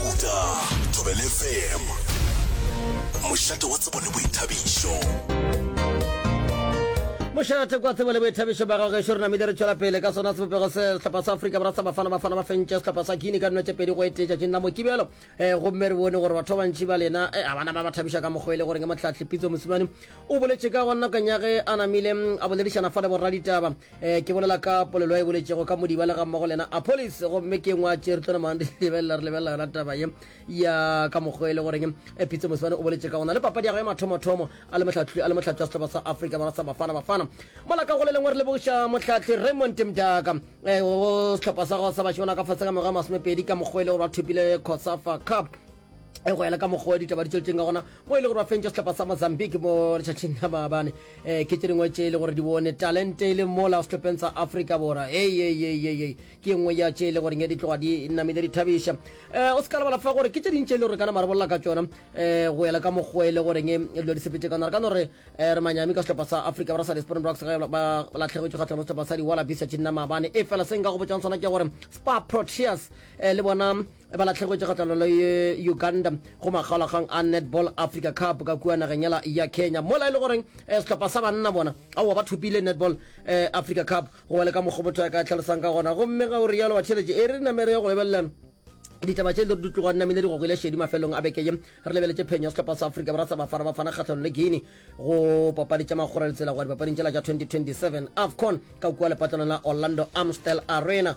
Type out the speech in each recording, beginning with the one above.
Uta Thobela FM, mošate wa tsebo le boithabišo. mošate kwa tsebo le boithabišo ba gago gešo re namile re tšwela pele ka sona sebopego se sehlopha sa afrika borwa sa bafana bafana ba fentše sehlopha sa guine ka dino tše pedi go etee tšatšing la mokibelo um gomme re bone gore batho ba bantši ba lena eh, a bana ba ba thabiša ka mokgwa e le goreng motlhatlhipitso mosimane o boletše ka gona nakong ya ge a namile mm, a boledišana fa le borraditaba Eh, ke bolela ka polelo e boletšego ka modiba le ga mmogo le yena apolis gomme ke ngwa tše re tlo namang re lebelela re lebelela yona taba ye ya ka mokgwa e le goreng eh, phitse mosebane o boletše ka gona le papadi ya gage mathomothomo a le motlhatlhi a le motlhatlhi wa setlhopa sa afrika borwa sa bafana bafana mola ka go le lengwe re lebogiša motlhatlhi raymond mdaka um eh, setlhopa sa gago sa bašemana ka fase ka mengwaga masomepedi ka mokgwa e le gore ba thopile cosafa cup e go ela ka mokgwa wa ditaba di tsweletseng ka gona mo e le gore ba fentša setlapa sa mozambique mo letšatšing la maabane um eh, ke tse dingwe tše e le gore di bone talente e le mola setlhopheng sa africa bora eeeeee ke nngwe ya tše e le goreng e di tloga di namile di thabiša um o se ka lebala fa gore ke tše dintši e le gore kana marabolola ka tsona um go ela ka mokgwa e le goreng e dilo di sepetse ka nare ka no re re manyami ka setlhopa sa africa ba ra sa dispron rocks ge ba latlhegetswe kgatlha mo setlhopa sa di-wallabisa tšenna maabane e fela se nka go botšang sona ke gore spa proteas um le bona ba latlhegwetše kgahlano le uganda go makgaolakgang a netball africa cup ka kua nageng yela ya kenya mola e le goreng eh, sehlopha sa banna bona aowa ba thopile netball eh, africa cup go ba le ka mokgwa motho ya ka tlhalosang ka gona gomme ga o rialo wa tšheletše e re namere ya go lebelelela ditaba tše di tloga nnamile di gogile šedi mafelong a bekeye re lebeletše phenyo sehlopha sa afrika borwa sa bafana bafana kgatlhano le guine go papadi tša magora ditsela go ya dipapading tšela tša 2027 afcon ka kua lepatlelong la orlando amstel arena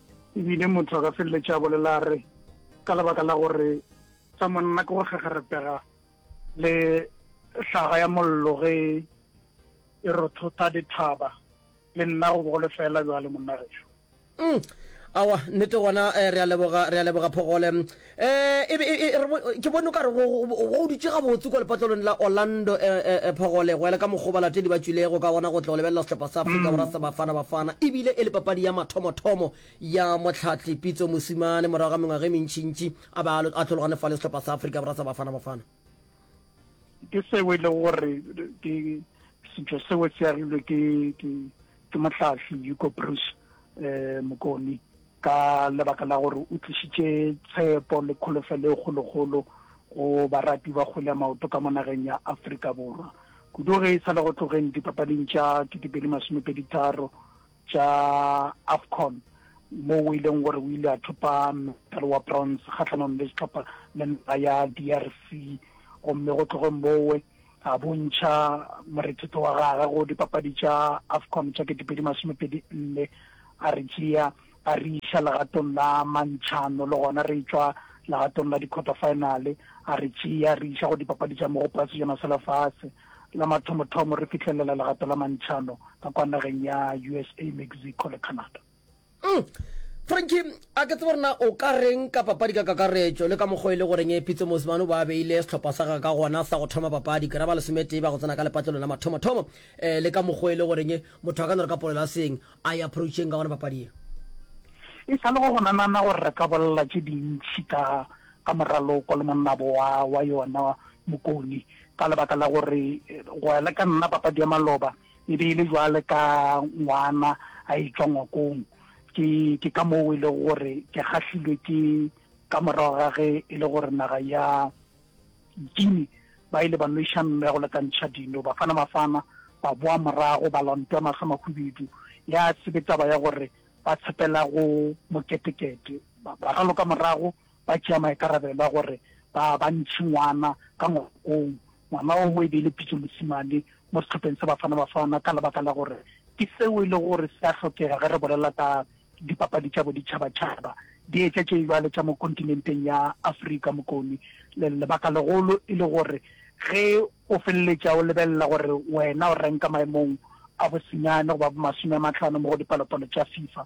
E bile motho a ka feleletša a bolela a re, Ka lebaka la gore sa monna ke go kgegerepega le hlaga ya mollo ge e rothotha dithaba, le nna go bogole feela bjale, monna gešo. Umm, aowa, nnete gona, eh, re a leboga, re a leboga Phogole. Ke bone o ka re go dutše gabotse kua lepatlelong la Orlando Phogolegwa le ka mokgwa o balatedi ba tšwilego ka gona go tlo lebelela sehlopa sa Afrika Borwa sa Bafana Bafana. E bile e le papadi ya mathomothomo ya Mohlahli Pitso Mosimane morago ga mengwaga e mentšintši a be a tlhologane fa le sehlopa sa Afrika Borwa sa Bafana Bafana. ke seo e le gore ke setšo seo se agilwe ke ke mohlahli yuko bruce um mokoni ka lebaka la gore o tlišitše tshepo le kholofelo e kgolokgolo go barati ba kgole ya maoto ka mo nageng ya aforika borwa kudu ge e sa le go tlogeng dipapading tša ketekedi masomepedi tharo tša AFCON mo o ileng gore o ile a thopa medal wa bronze kgatlhanong le setlhopha le naga ya DRC gomme go tloge mowe a bontšha morethetho wa gage go dipapadi tša AFCON tša ketepedi masomepedi nne a re tšea a re iša legatong la mantšhano le gona re tswa legatong la di-quarter finale a re tšea re iša go dipapadi tša mogopo ya sejana sa lefatshe La mathomothomo re fihlelela legato la mantšhano ka kwa nageng ya USA, Mexico le Canada. Mm. Frankie, a ke tsebe rena o ka reng ka papadi ka kakaretšo le ka mokgwa e le goreng e Pitso Mosimane o ba a beile sehlopha sa gagwe ka gona sa go thoma papadi ke ra ba lesometee ba go tsena ka lepatlelong la mathomothomo um le ka mokgwa e le goreng motho a ka no re ka polelo a seng a e approacheng ka gona papadi e e sa le go gona nana gore re ka bolela tše dintšhi ka ka moraloko le monnabo wa wa yona mokoni Ka lebaka la gore go ya le ka nna papadi ya maloba e be e le jwale ka ngwana a e tšwa ngwakong, ke ke ka moo e lego gore ke kgahlilwe ke ka morago ga ge e le gore naga ya Guinea ba ile ba nweša mme go lekantšha dino. Bafana Mafana ba boa morago ba lontwa mahlo mahubedu, ya se be taba ya gore ba tshepela go moketekete, ba raloka morago ba tšea maikarabelo a gore ba ba ntšhe ngwana ka ngwakong. Ngwana oo e be e le Pitso Mosimane mo sehlopheng sa Bafana Bafana ka lebaka la gore ke seo e le gore se a hlokega ge re bolela ka dipapadi tša boditšhabatšhaba, di etša tše bjalo tša mo kontinenteng ya Afrika Mokoni. Lebaka legolo e le gore ge o feleletša o lebelela gore wena o renka maemong a bosenyane goba bo masome a matlhano mo go dipalopalo tša FIFA,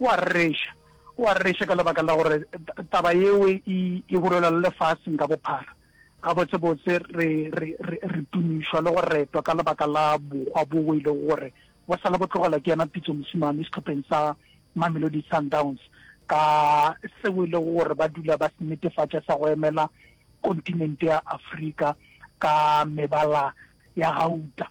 O a rereša, o a rereša ka lebaka la gore taba yeo e, e hurelwa le lefaseng ka bophara. Gabotsebotse re, re, re, re tumišwa le go retwa ka lebaka la bohwa boo e lego gore bo sa le bo tlogelwa ke yena Pitso Mosimane sehlopheng sa Mamelodi Sundowns, ka seo e lego gore ba dula ba se netefatša sa go emela kontinente ya Afrika ka mebala ya gauta.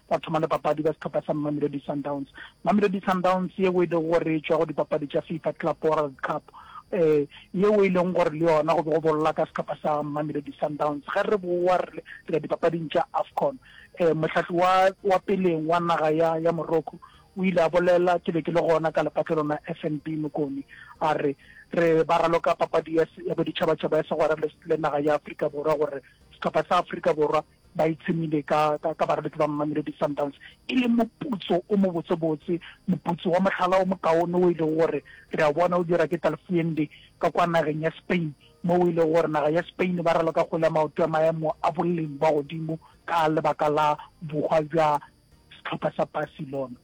ba thoma le papadi ba sehlopha sa Mamelodi Sundowns. Mamelodi Sundowns yeo e lego gore e tšwa go dipapadi tša FIFA Club World Cup eh yeo e leng gore le yona go be go bolla ka sehlopha sa Mamelodi Sundowns ge re boa re ya dipapading tša AFCON eh mohlahli wa wa peleng wa naga ya ya Morocco o ile a bolela ke be ke le gona ka lepatle lona FNB Mokoni a re re ba raloka papadi ya ya boditšhabatšhaba ya segwera le naga ya Afrika Borwa gore sehlopha sa Afrika Borwa ba itshemile ka, ka, ka barabetsi ba Mamelodi Sundowns e le moputso o mobotsebotse, moputso wa mohlala o mokaone o e lego gore re a bona o dira ke Talfuende ka kwa nageng ya Spain, mo o e lego gore naga ya Spain ba raloka kgole ya maoto ya maemo a boleng bwa godimo ka lebaka la bohwa bja sehlopha sa Barcelona.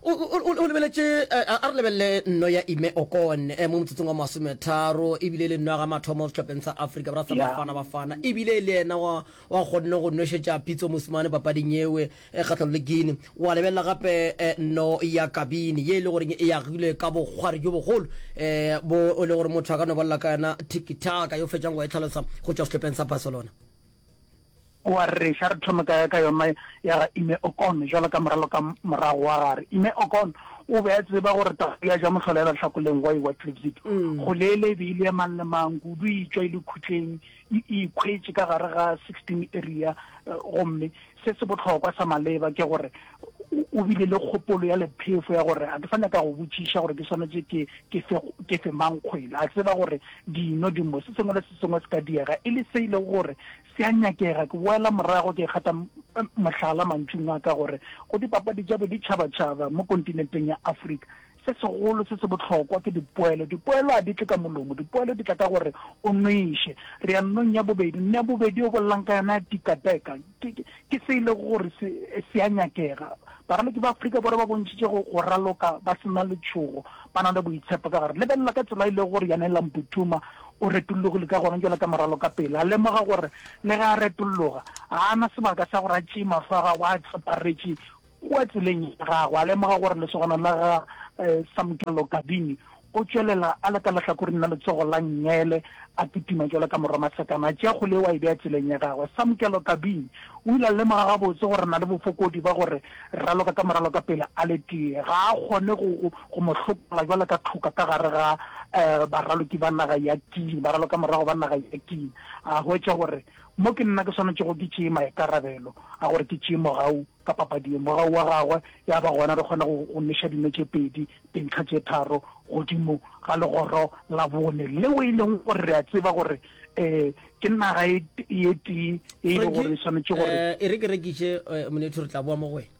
o lebeletše eh, a re lebelele nno ya ime okon eh, mo motsotsong wa masometharo ebile le nno ya ga mathomo setlhopheng sa africa bra sa bafana bafana ebile le ena wa kgonne go nošetša pitso mosimane papading ewe eh, kgatlhalo le guine wa lebelela gape nno ya kabine ye e le goreng e yagilwe ka bokgwari jo bogolo um bo o le gore motho a ka no balela ka yona tikitaka yo fetšang go e tlhalosa go tšwa setlhopheng sa barcelona O a rereša. A re thome ka, ka yona ya ga Ime Okon, bjalo ka moralo ka morago wa gare. Ime Okon o be a tseba gore tau ya ja mohlolela lehlakoleng gwa ewa Tripsit. Goleele e be e le ya mang le mang, kudu e tšwa e le khutleng, e, e ikhwetše ka gare ga 16 area. Gomme se se bohlokwa sa maleba ke gore o bile le kgopolo ya lephefo ya gore ga ke sa nyaka go botšiša gore ke swanetše ke ke fe ke fe mang kgwele a tseba gore dino dimo se sengwe le se sengwe se ka diega e le se e lego gore se a nyakega ke boela morago ke kgatha mohlala mantšung a ka gore go dipapadi tša boditšhabatšhaba mo kontinenteng ya afrika Se segolo se se bohlokwa ke dipoelo. Dipoelo a di tle ka molomo. Dipoelo di tla ka gore o nweše. Re ya nnong ya bobedi. Nne ya bobedi yo bolelang ka yona ya tikateka ke, ke, ke se e lego gore se, se a nyakega. Baraloki ba Afrika Borwa ba bontšhitše go, go raloka ba se na letšhogo, ba na le boitshepo ka gare. Lebelela ka tsela e lego gore Janela Mputhuma o retollogile ka gona bjalo ka moralokapele. A lemoga gore le ge a retolloga, ga a na sebaka sa gore a tšee mahlo a gagwe a tseparetše Kua tseleng ya gagwe, a lemoga gore lesogana la ga Samkelo Gabini o tšwelela a le ka lehlakoreng la letsogo la Ngele, a kitima jalo ka morwa masekana, a tšea kgole yeo a e bea tseleng ya gagwe. Samkelo Gabini o ile a lemoga gabotse gore na le bofokodi ba gore raloka ka moralo ka pele a le tee ga a kgone go go mo hlokela jalo ka tlhoka ka gare ga baraloki ba naga ya King, baralokamorago ba naga ya King. A hwetša gore mo ke nna ke swanetšego ke tšee maikarabelo a gore ke tšee mogau. ka papadi ye, morago wa gagwe ya ba gona re kgona go go neša dino tše pedi, dintlha tše tharo godimo ga legoro la bone leo e leng gore re a tseba gore um ke naga e ye tee e e le gore e swanetše gore eh, e re ke rekiše eh, monetho re tla boa mo go wena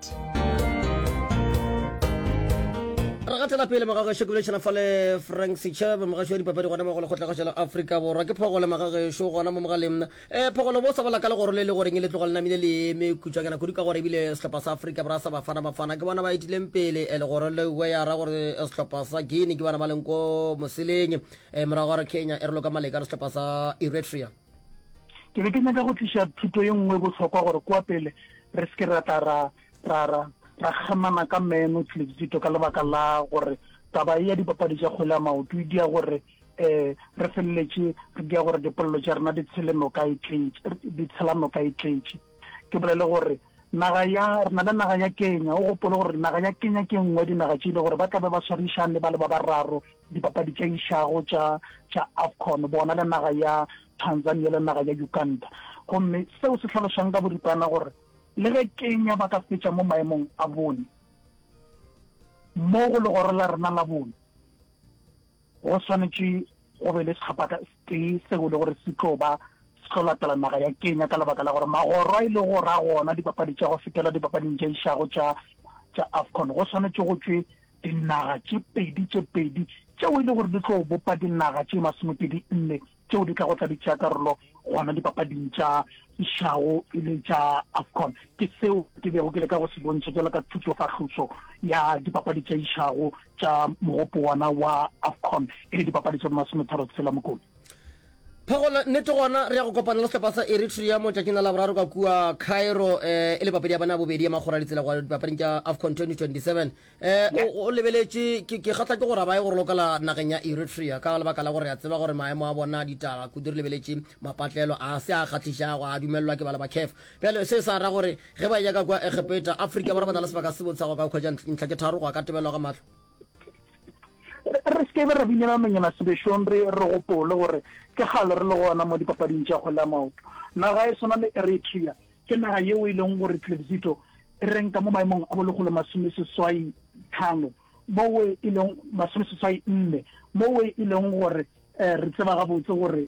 re gatela pele magageso ke bolešana fa le frank setšhaba mogašo wa dipapadi gona mo go lekgotlagašo la afrika borwa ke phogole magageso gona mo mogaleng um eh, phogole bo sa bola ka legoro le le goreng e le tlogo le namile le eme kutšwanyana kudu ka gore ebile sehlopha sa afrika borwa sa bafana bafana ke bona ba etileng pele eh, legoro le uwe ya ra gore eh, sehlopha sa guine ke bona ba leng ko moseleng morago gore kenya e re loka maleka re sehlopha sa eritrea ke be ke nyaka go tliša thuto ye nngwe e bohlokwa gore kwa pele re se ke ra tla ra ra ra ra kgamana ka meno tleletito ka lebaka la gore taba e ya dipapadi tša kgwele ya maoto e dia gore um re feleletše re dia gore dipolelo tša rena di tshele noka e tletše di tshela noka e tletše ke bolele gore naga ya re na le naga ya kenya o gopole gore naga ya kenya ke nngwe dinaga tše e le gore ba tlabe ba swarišane ba le ba bararo dipapadi tša išago tša tša AFCON bona le naga ya Tanzania le naga ya Uganda gomme seo se tlhalošang ka boripana gore le ge Kenya ba ka fetša mo maemong a bone mo go legoro la rena la bone go swanetše go be le setlhopha tee seo le gore se tlo ba se tlo latela naga ya Kenya ka lebaka la gore magoro a ile e go ra gona dipapadi tša go fetela dipapading tša išago tša tša AFCON go swanetše go tšwe dinaga tše pedi tše pedi tšeo e le gore di tlo bopa dinaga tše masomepedi nne tšeo di tlago tla di tšea karolo gona dipapading tša išago e le tša afcon ke seo ke bego ke le ka go se bontšha jalo ka thutsofahloso ya dipapadi tša išago tša mogopo wona wa afcon e le dipapadi tša masometharo tshela mokone Phegola, Nnete gona re ya go kopana le sehlopha sa Eritrea motšatšing la Laboraro ka kua Cairo eh, e le papadi ya bona ya bobedi ya makgora ditsela go dipapading tša AFCON 2027. Eh, o, o lebeletše, ke, ke kgatla ke gore ba ye go rolokela nageng ya Eritrea ka lebaka la gore a tseba gore maemo a bona a ditaga kudu re lebeletše mapatlelo a se a kgahlišago a dumelelwa ke bala ba CAF. Bjale se sa ra gore ge ba ya ka kua Egepeta, Afrika Borwa ba na le sebaka se botsago ka go khwetša ntlha tše tharo go ya ka tebelo ga mahlo. re se kebe ra binela monyana sebešong re re gopole gore ke gale re le gona mo dipapading tša kgwele ya maoto naga e swana le eritrea ke naga yeo e leng gore tlebzito e renka mo maemong a bolekgolo masome seswai tlhano mowe e leng masome seswai nne mowe e leng gore um re tseba gabotse gore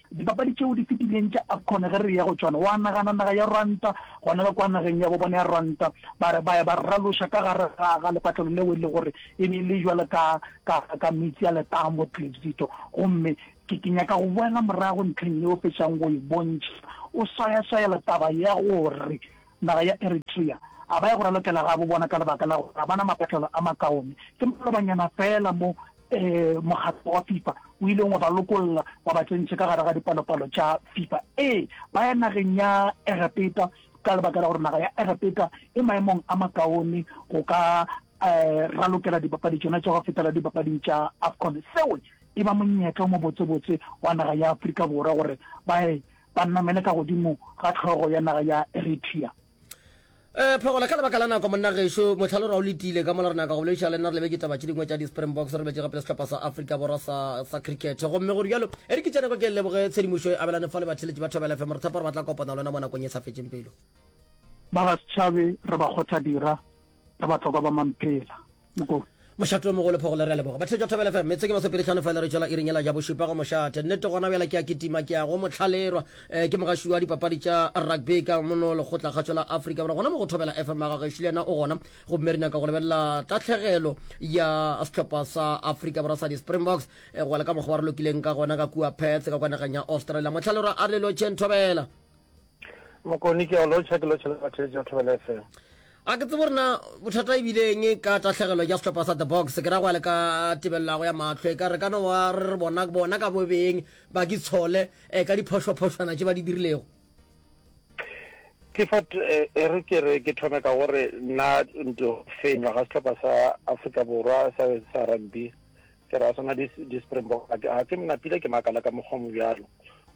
Dipapadi tšeo di fetileng tša Afcon ge re eya go tšona, wa nagana naga ya Rwanda, gona ka kwa nageng ya bo bona ya Rwanda, ba re ba ya ba raloša ka gare ga ga lepatlelo leo e le gore e be e le jwalo ka ka ka metsi a letamo tlibzito. Gomme ke ke nyaka go boela morago ntlheng yeo fetšang go e bontšha o swayaswayela taba ya gore naga ya Eritrea, a ba ya go ralokela gabo bona ka lebaka la gore ga ba na maphatlelo a makaone. Ke malobanyana feela mo mokgatlo wa Fifa o ileng wa ba lokolla wa ba tsentše ka gare ga dipalopalo tša Fifa. Ee, ba ya nageng ya Egepeta ka lebaka la gore naga ya Egepeta e maemong a makaone go ka ralokela dipapadi tšona tša go fetela dipapading tša Afcon. Seo e ba monyetla o mobotsebotse wa naga ya Afrika Borwa gore ba ye ba namele ka godimo ga tlhogo ya naga ya Eritrea. Eh, phegola ka lebaka la nako monna gešo motlha lo ra o letile ka mola re naka go bolediša le nna re lebe ke taba tše dingwe tša di-springboks re lebetse gape le sehlopha sa africa borwa sa sa cricket gomme gore bjalo e re ke tšeneko ke leboge tshedimošo e abelane fa le batheletši ba thobela fm re thepa gore ba tla kopana lona mo nakong e sa fetseng pelo ba ga setšhabe re ba kgotha dira re batlokwa ba mamphela Mokong. Mošate o mogolo phogolo re a leboga batheletša Thobela FM metseng e masopedi tlhano fela re tšwela iring yela ja bošupa go mošate nnete gona bjala ke a kitima ke a go motlhalerwa eh, ke mogaši wa dipapadi tša rugby ka mono lekgotla kgatšo la Afrika Borwa gona mo go Thobela FM ga gešo le yena o gona go mme re nyaka go lebelela tatlhegelo ya sehlopha sa Afrika Borwa sa di-Springboks eh, go wela ka mokgwa wa re lokileng ka gona ka kua Perth ka kwa nageng ya Australia motlhalerwa a re lelo chen Thobela Mokoni ke a o lotšha ke lotšha le batheletši ba Thobela FM. A ke tsebo rena bothata e bileng ka tahlegelo ya sehlopha sa the box ke ra go ya le ka tebelelago ya mahlo e ka re kana wa re re bona bona ka bobeng ba ke tshole um ka diphošwaphošwana tše ba di dirilego kefat e re ke re ke thome ka gore nna nto fenywa ga sehlopha sa afrika borwa sa sa rugby Ke ra swana le di-Springbok, ga ke mnapile ke makala ka mokgwa mo bjalo.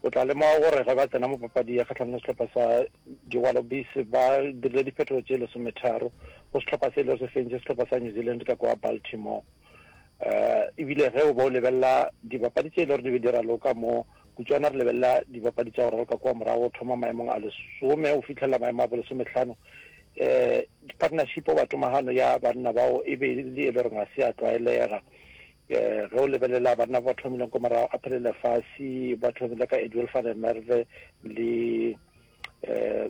O tla lemoga gore ge ba tsena mo papadi ya kgatlhanong le sehlopha sa di-Wallabies ba dirile diphetogo tše lesometharo go sehlopha se ile se fentše sehlopha sa New Zealand ka kwa Baltimore. Um ebile ge o ba o lebelela dibapadi tše e le gore di be di raloka mo Kutšwana re lebelela dibapadi tša go raloka kua morago go thoma maemong a lesome go fihlelela maemo a bolesometlhano. Um partnership goba tomagano ya banna bao e be e le e le goreng ga se ya tlwaelega. Um ge o lebelela banna ba ba thomileng kwa morago, Aphelele Lefasi, ba thomile ka Edwell van der Merwe le um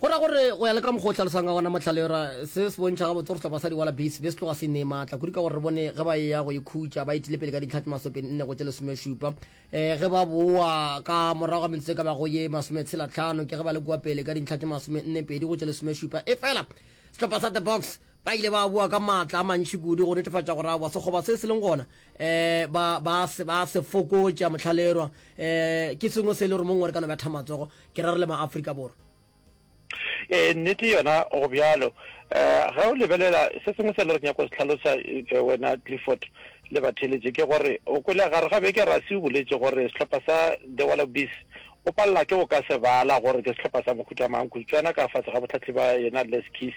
Go ra gore go ya le ka mokgwa o hlalosang ka gona mohlale ra se se bontšha gabotse gore sehlopha sa Diwala Bees be se tloga se inee maatla kudu ka gore re bone ge ba eya go ikhutša ba etile pele ka ditlha tse masopeng nne go tše lesomešupa um eh, ge ba boa ka morago ga metsotso e ka bago ye masometshelatlhano ke ge ba le kua pele ka dintlha tše masomenne pedi go tše lesomešupa efela sehlopha sa The Boks Ba ile ba boa ka maatla a mantši kudu go netefatša gore aowa sekgoba se se leng gona ba ba se ba se fokotša. Mohlalerwa ke sengwe se e le gore mongwe re ka no betha matsogo, ke ra re le maAfrika Borwa. Ee, nnete yona go bjalo. Ge o lebelela se sengwe se e le gore ke nyaka go se tlhalosa wena Clifford le batheeletši ke gore o kwele gare ga beke Rassie o boletše gore sehlopha sa The Wallabies O palelwa ke go ka se bala gore ke sehlopha sa mohuta mang, kutšwana ka fase ga bohlatli ba yena Les Keys.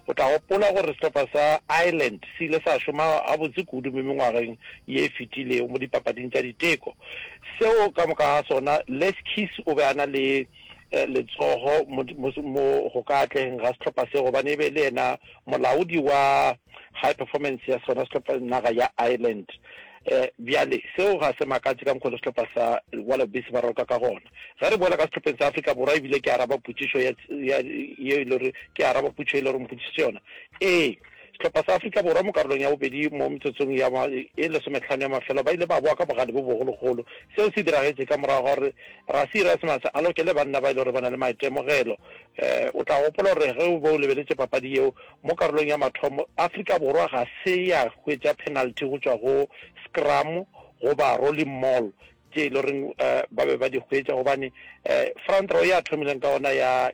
O tla gopola gore sehlopha sa Ireland se ile sa šoma gabotse kudu mo mengwageng ye e fetilego mo dipapading tša diteko. Seo ka moka ga sona, Les Keys o be a na le letsogo mo go ka atlegeng ga sehlopha se gobane e be e le yena molaodi wa high performance ya sona sehlopha, naga ya Ireland. E, bjale, seo ga se makatše ka mokgwa le sehlopha sa Wallabies ba roka ka gona. Ge re boela ka sehlopheng sa Afrika Borwa, ebile ke araba potšišo ya, ya, ye e lego, ke araba potšo e lego mpotšišitše yona. Ee, sehlopha sa Afrika Borwa mo karolong ya bobedi mo metsotsong ya ma, e lesomehlano ya mafelo ba ile ba boa ka bogale bo bogologolo. Seo se diragetše ka morago ga gore Rassie Erasmus a lokele banna ba e lego gore ba na le maitemogelo. E, o tla gopola gore ge o be o lebeletše papadi yeo, Mo karolong ya mathomo, Afrika Borwa ga se ya hwetša penalty go tšwa go scrum goba rolling maul tše e le goreng ba be ba di hwetša gobane front row ya thomileng ka yona ya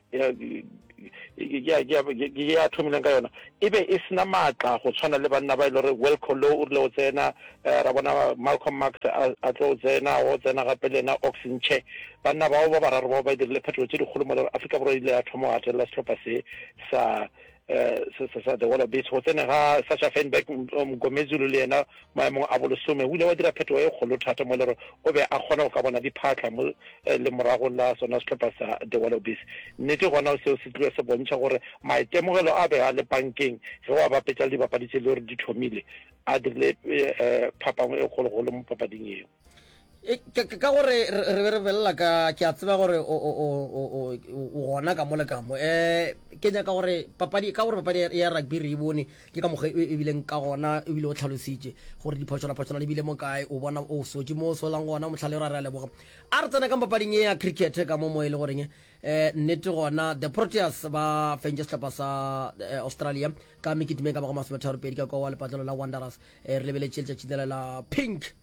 ya thomileng ka yona e be e sena maatla go tshwana le banna ba e le gore Wilco Louw o rile o tsena ra bona Malcolm Marx a tlo tsena o tsena gape le yena Ox Nche Banna bao ba bararo bao ba e dirile phetogo tše dikgolo mola Afrika Borwa e ile ya thoma go gatelela sehlopha se sa uh, sa the Wallabies go tsene ga Sasha Feinberg Mgomezulu le yena maemong a bolesome o ile wa dira phetogo e kgolo thata mo e le gore o be a kgona go ka bona diphatlha mo eh, le morago la sona sehlopha sa the Wallabies nnete gona seo se tlile se bontšha gore maitemogelo a be a le bankeng ge wa bapetsa le dibapadi tse le gore di thomile a dirile eh, phapang e kgologolo mo papading eo ka gore re be re belela ka ke a tseba gore o gona ka mole kamo um eh, ke nyaka gore papadi ka gore papadi ya rugby re e bone ke ka mokgwa e, e bileng ka gona ebile o tlhalositše gore diphotshonaphotshona di bile mo kae o bona o sotse mo o solang gona motlhale ra re a leboga a re tsena ka papading e ya cricket ka mo mo e le goreng um nnete gona the proteas ba fentse setlhopha sa eh, australia ka mekitime ka bago masometharo pedi ka kwa wa lepatlelo la wanderers um re lebeletse letšatšine la pink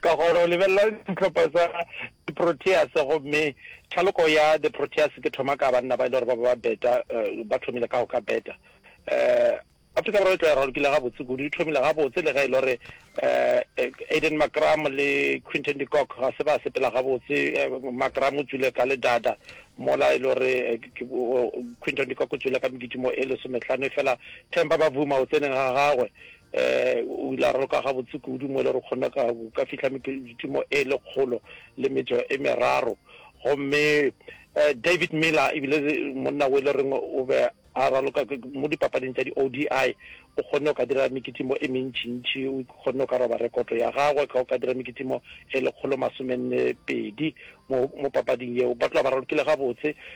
ka gore o lebelela ditlhopha tsa di-proteas gomme thaloko ya di-proteas ke thoma ka banna ba e le gore ba ba beta eh, ba thomile ka go ka beta um afrika borwa e tla ralokile gabotse kudu e thomile gabotse le ge e le gore um aiden macram le quinton decock ga se ba sepela gabotse eh, macram o tswile ka ledada mola e le gore quinton decock o tswile ka meditimo e lesometlhano e fela tempa ba vuma o tseneng ga gagwe O ile a roka gabotse kudu mo e le re kgonne ka ka fihla mepeditimo e lekgolo le metso e meraro. Gomme David Miller ebile monna o e le reng o be a raloka mo dipapading tša di-ODI, o kgonne go ka dira mekitimo e mentšintši, o kgonne go ka roba rekoto ya gagwe ka go ka dira mekitimo e lekgolo masomenne pedi mo mo papading yeo. Ba tloga ba ralokile gabotse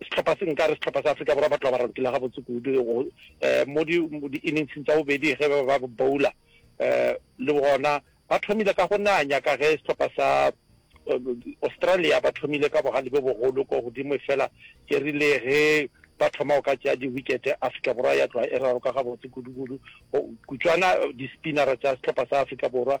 Sehlopha se nkare sehlopha sa Afrika Borwa ba tloga ba rantile gabotse kudu um mo di-inningsing tsa bobedi ge ba ba bowler um le gona ba thomile ka go nanya ka ge sehlopha sa Australia ba thomile ka bogale bo bogolo ko godimo fela ke rile ge ba thoma go ka tšea di-wicket Afrika Borwa ya tloga e raroka gabotse kudu-kudu kutswana di-spinnera tša sehlopha sa Afrika Borwa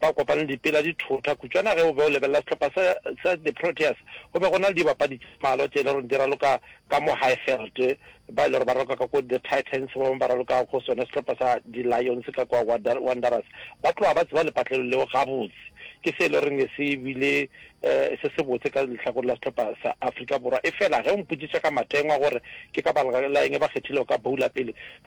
Ba kopane dipela di thotha. Kutšwana ge o be o lebelela sehlopha sa, sa di-Proteas, go be go na le dibapadi tše mmalwa tše e le gore di raloka ka mo Highveld, ba e le gore ba raloka ka ko the Titans, ba bangwe ba raloka go sona sehlopha sa di-Lions ka kwa Wanderers. Ba tloga ba tseba lepatlelo leo gabotse. Ke se e le gore ne se bile um se sebotse ka lehlakore la sehlopha sa Afrika Borwa. Efela ge o mpotšiša ka matengwa gore ke ka baka la eng ba kgethile go ka bowler pele,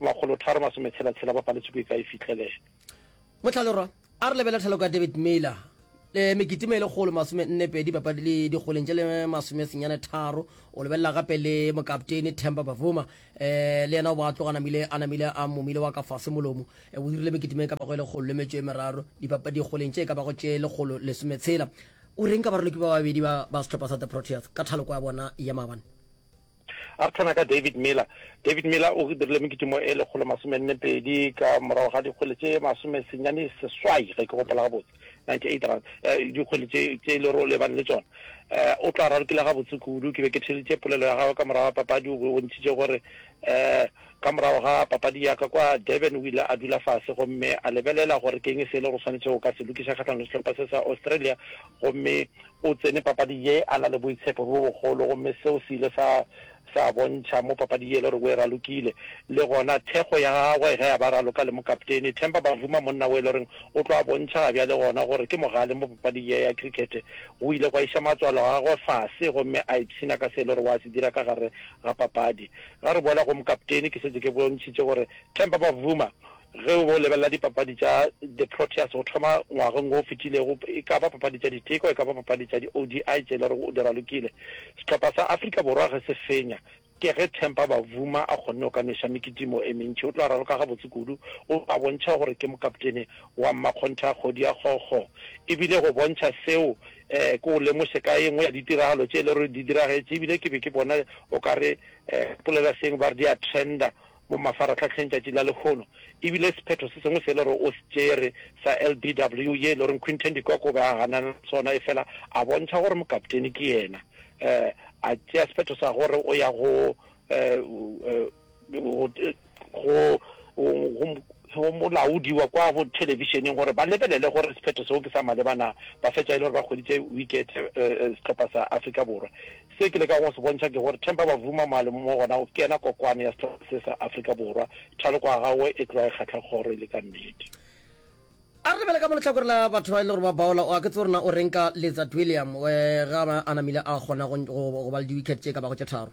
makgolo tharo masome tshela tshela ba paletšwe ko e ka e fihlelela. Motlhalorwa, a re lebele thaloko ya David Miller le mekitimo e lekgolo masome nne pedi papadi le dikgoleng tše le masome senyane tharo o lebelela gape le mokapteini Temba Bavuma um le yena o ba tloga namile a namile a momile wa ka fase molomo eh, o dirile mekitimo e ka bago e lekgolo le metšo e meraro dikgoleng tše e ka bago tše lekgolo lesometshela o reng ka baroloki ba babedi ba sehlopha sa the proteas ka thaloko ya bona ya maabane A re tshwana ka David Miller. David Miller o dirile mekitimo e lekgolo masome nne pedi ka morago ga dikgwele tše masome senyane seswai ge ke gopola gabotse 98 rand eh, dikgwele tše tše e lero o lebane le tsona eh, o tla rarokile gabotse kudu ke be ke theleditše polelo ya gagwe ka morago ga papadi o be o ntšhitše gore eh, ka morago ga papadi ya ka kwa durban o ile a dula fase gomme a lebelela gore ke eng se e le go tshwanetse go ka se lokiša kgatlhanong le sehlopha se sa australia Gomme o tsene papading ye a na le boitshepo bjo bogolo, gomme seo se ile sa, sa bontšha mo papading ye e le gore o e ralokile. Le gona, thekgo ya gagwe ge a ba raloka le mokaptene, Temba Bavuma, monna wo e le gore o tlo a bontšha gabjale gona gore ke mogale mo papading ye ya krikete, go ile gwa iša matswalo a gagwe fase gomme a ipshina ka se e le gore o a se dira ka gare ga papadi. Ga re boela go mokaptene, ke šetše ke bontšhitše gore Temba Bavuma, Ge o be o lebelela dipapadi tša The Proteas go thoma ngwageng wo o fetilego, e ka ba papadi tša diteko, e ka ba papadi tša di-ODI tše e le gore o di ralokile, sehlopha sa Afrika Borwa ge se fenya, ke ge Temba Bavuma a kgonne go ka nweša mekitimo e mentši. O tla raloka gabotse kudu, o a bontšha gore ke mokaptene wa mmakgontha kgodi ya kgokgo. E bile go bontšha seo, ke o lemoše ka ye nngwe ya ditiragalo tše e le gore di diragetše e bile ke be ke bona o ka re polelaseeng ba re di a trender, mo mafarahlahleng tšatši la lehono, e bile sephetho se sengwe se e le gore o se tšere sa LBW ye e le gore Quinton de Kock o be a ganana le sona efela a bontšha gore mokapteni ke yena um a tšea sephetho sa gore o ya go um go molaodi wa kwa bo thelebišeneng gore ba lebelele gore sephetho seo ke sa maleba na. Ba fetša e le gore ba hweditše wikete sehlopha sa Afrika Borwa Se ke lekago go se bontšha ke gore Temba Bavuma Malemu mo gona o kena kokwane ya sehlopha se sa Afrika Borwa, thaloko ya gagwe e tloga e kgahla kgoro e le ka nnete. A re lebele ka mo lehlakore la batho ba e le gore ba baola, o a ke tsebe gore na o reng ka Letsatwilliam ge a namile a kgona go ba le di-wicket tše ka bago tše tharo.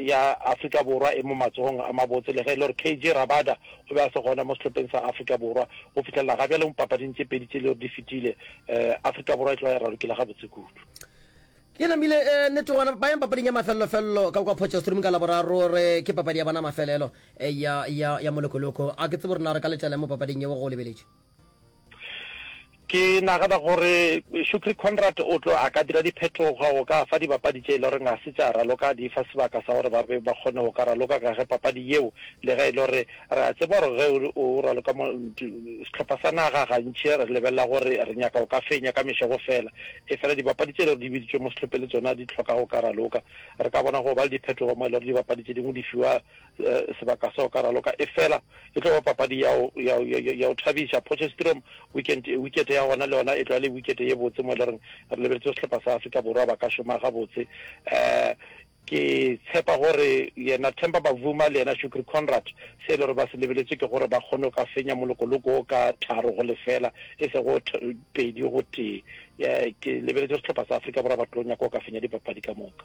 ya Afrika Borwa e mo matsogong a mabotse le ge e le gore KJ Rabada o be a se gona mo sehlopheng sa Afrika Borwa. Go fihlelela ga bjale mo papading tše pedi tše e le gore di fetile, Afrika Borwa e tloga e ralokile gabotse kudu. Ke namile nnete gona ba yang papading ya mafelelo-felelo ka kwa Potchefstroom ka Laboraro re ke papadi ya bona mafelelo ya molekoloko. A ke tsebe gore na re ka letšela mo papading yeo go lebeletše. ke nagana gore Shukri Conrad o tlo a ka dira diphetogo o ka fa dibapadi tše e le gore ga se tša raloka di fa sebaka sa gore ba be ba kgone go ka raloka ka ge papadi yeo le ge e le gore re a tseba gore ge o raloka sehlopha sa naga gantši re lebelela gore re nyaka o ka fenya ka mešego fela e fela dibapadi tše e le gore di biditšwe mo sehlophe le tsona di tlhoka go ka raloka re ka bona go ba le diphetogo mo e le gore dibapadi tše dingwe di fiwa sebaka sa go ka raloka efela e tlo ba papadi ya go thabiša Potchefstroom wikete ya gona le yona e tlo ya le wikete ye botse mo e le goreng re lebeletse go sehlopha sa Afrika Borwa ba ka šoma gabotse um ke tshepa gore yena Themba Bavuma le yena Shukri Conrad se e le gore ba se lebeletse ke gore ba kgone ka fenya molokoloko o ka tharo go lefela e se go pedi go tee ke lebeletse sehlopha sa Afrika Borwa ba tlo nyaka go ka fenya dipapadi ka moka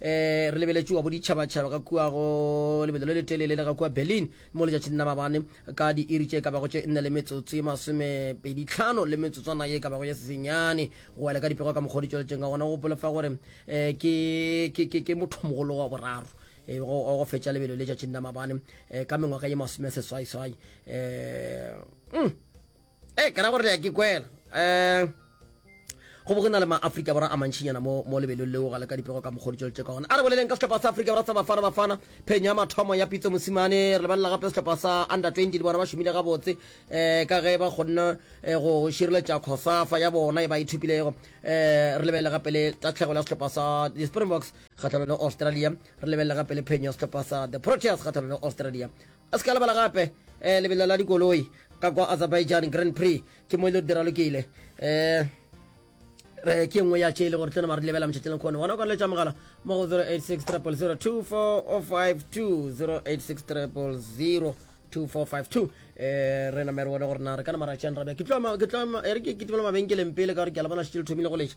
eh re lebeletše wa boditšhabatšhaba ka kua go lebelo le letelele le ga kua berlin mo letšatšing la mabane ka diiri tše ka bago tše nne le metsotso ye masomepeditlhano le metsotswana ye ka bago ye sesenyane go wela ka dipego ka mokgwa o di tšweletšeng ka gona go gopola fa gore um ke mothomogolo wa boraro eh, go fetša lebelo le tšatšing la mabane eh, ka mengwaga ye masome seswaiswai um mm. Eh, ke ra gore le ya ke kwela. Eh, go bo go na le ma-afrika borwa a mantšhinyana mo mo lebelong leo ga le ka dipego ka mokgodi tšweletse ka gona a re boleleng ka setlhopha sa afrika borwa sa bafana bafana phenyo ya mathomo ya pitso mosimane re lebalela gape setlhopha sa under 20 le bona ba šomile gabotse um ka ge ba kgonne eh, go šireletša khosafa ya bona e ba ithupilego um eh, re lebelele gape le tatlhegelo ya setlhopha sa di-springboks kgatlhanong le australia re lebelele gape le phenyo ya setlhopha sa the proteas kgatlhanong le australia A se ka lebala gape lebelo la dikoloi ka kwa Azerbaijan Grand Prix ke mo e le diralokile um re ke nngwe ya tše e le gore tlo nama re lebela motšhetšeng kgone gona o ka letša mogala mo go 086 086 re namere wone gore na re ka nama ra tšean rabja ke tlo mabenkeleng pele ka gore ke a le bona šitše le thomile go letša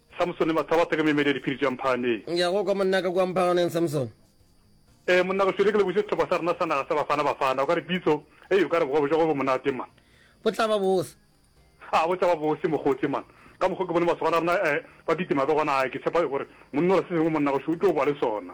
Samsone, Mathabatha ke meemedi ya diphiri tša Mphane. Ya go kwa monna ka kua Mphaganeng, Samsone. Ee, monna ka šwele ke lebogiše sehlopha sa rena sa naga sa Bafana Bafana. O ka re pitso, ei, o ka re bogobe bja go bo monate man. Bo tla ba bose. A bo tla ba bose mokgotse man. Ka mokgwa ke bone masogana a rena eh, ba kitima be gona, ai, ke tshepa gore monna o re se sengwe monna gašo o tlo boa le sona.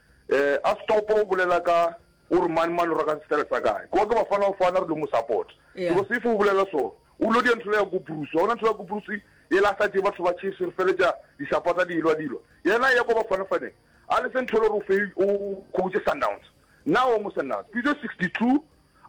Eh a stop o bolela ka o re mani mani o raka sefere sa kae kwa ke bafana o fana re lo mo support because if o bolela so o lo di ntlo ya go bruce wa bona ntlo ya go bruce e la sa je batho ba chiefs re feletsa di supporta di ilwa dilo yena ya go bafana fane a le sentho lo re o fe o coach sundowns now mo sundowns pitso 62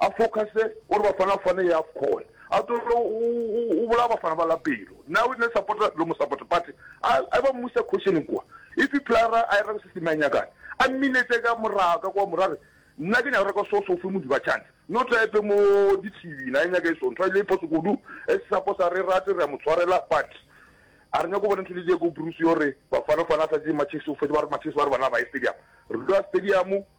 a focuse gore Bafana Bafana ye Afcon a tlogele go bolaya Bafana ba la pelo nna ne supporter lo mo support but a e ba mmusa caution kwa if e player a e ra go se seme a nyakane a mminetse ka morago ka kwa morare nna ke nyaka re ka so so fe modiba chance no tla epe mo di TV na e nyaka e so ntwa le poso kudu e sa posa re rate re mo tshwarela but a re nyako bona ntho le je go Bruce yo re Bafana Bafana sa je matches o fe ba re matches ba re bana ba e stadium re dula stadium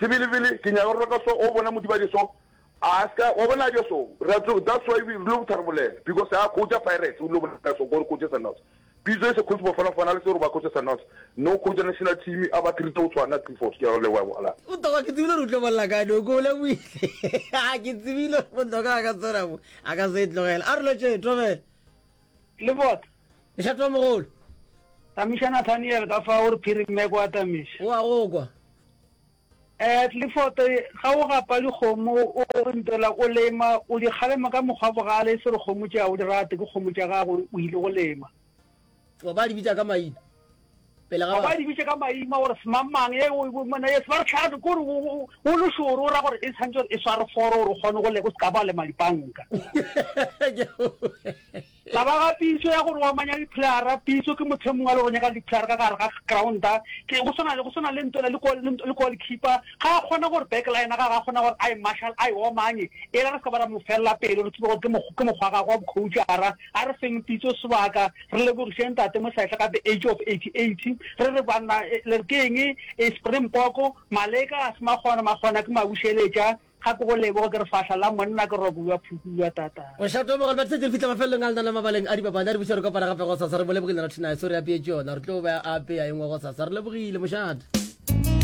Sebelebele, ke nyaka gore ka so o bona Modibadi so a se ka wa bona ja so ra tlo that's why we lo tharabolela because a khotša Pirates o lo bona so gore khotša Sundowns pitso e se khotša bafana fana le se gore ba khotša Sundowns no khotša national team a ba treat o tshwana three four ke ya go le wa bona. Botoka ke tsebile re utlo bolla ka no ko bola buile ha ke tsebile botoka ka tsena mo a ka se tlogela a re lo tšhe tlogela. le bot lešato mogolo tamiša nathaniel ka fa o re phiri mme kwa tamiša o a go kwa um tlifoto ga o gapa dikgomo o ntela o lema o di kgalema ka mokgwa bogale e se re kgomo tša o di rate ke kgomo tša gago o ile go lema ba di bitsa ka maina pele ga ba di bitse ka maima gore semamang ye o bo mona yes ba re tlhaga go re o lo shoro ra gore e tshantse e sware foro re gone go le go ska ba le madipanka la ba ga pitso ya gore wa manya di plara pitso ke motho mongwe le go nyaka di plara ka gare ga ground ke go sona le go sona le ntola le go le go keeper ga gona gore back line ga ga gona gore i marshal i o manye e re ska ba ra mo fella pele re tsebo gore ke mo ke mo gwa ga go coach ara a re feng pitso sebaka Re lebogiše Ntate Mosehle ka the age of 88. Re re banna le re ke eng e Springbok, Maleka a se makgona, makgona ke mabušeletša. Gape go leboge ke re fahla la monna ke robo wa phuku wa tata. Mošate wa magolwane setse re fitlha mafelelong a lenana mabaleng a dipapadi a re buša re kopana gape gosasa re bolebogile rathinaye so re apeetše yona re tlo be a apeya engwe gosasa re lebogile mošate.